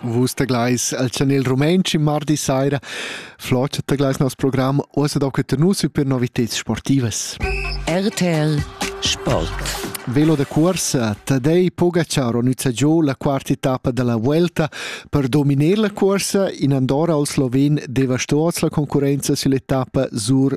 Vus teglais al chanel rumantsch in mardi saira. Flot teglais nos program Uossa da que nus per noviteds sportivas. RTL Sport. Velo da corsa, Tadei Pogachar nüza giù la quarta etappa della Vuelta per dominar la corsa in Andorra al Sloven devastos la concurenza sull'etappa sur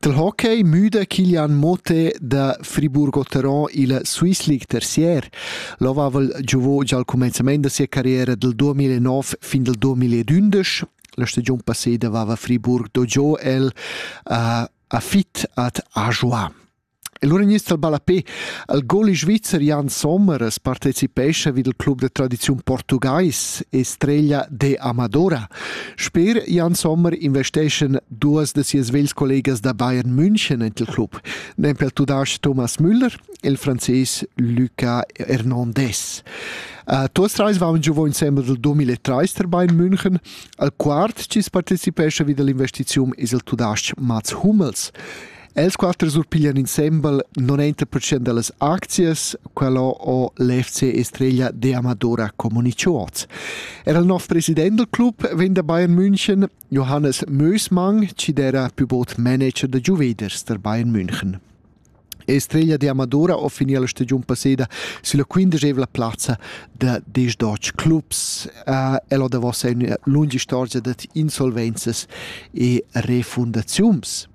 Dal hockey müda Kilian Motte da Friburg-Oteron illa Swiss League terzier. El avaiva giovô già al cumenzamaint da sia carriera dal 2009 fin dal 2011. La stagiun passeda avaiva Friburg dogiò el a, a fit ad Ajoie. E lura gnist el ballapè al goli svizzer Jan Sommer as partecipescha vi dal club da tradiziun portugais e streglia de Amadora. Sper Jan Sommer investeschan duos da sias vels collegas da Bayern München ent il club, nempe il tudasch Thomas Müller e il frances Luca Hernandez. Uh, tuos trais vaun giovò insembel dal 2003 tar Bayern München, al quart chi's partecipescha vi dall'investiziun es il tudasch Mats Hummels. Els quatter surpiglian insembel 90% dallas aczias, quello o l'FC Estrella de Amadora Comunicuoz. Era il nov president del club vegn da Bayern München, Johannes Mösmang, ci era più bot manager de Juveders der Bayern München. Estrella de Amadora ho finì la stagiun passeda sulla quindicevla plazza da diesch clubs. Uh, el ho davos una lunga storia da insolvences e refundaziuns.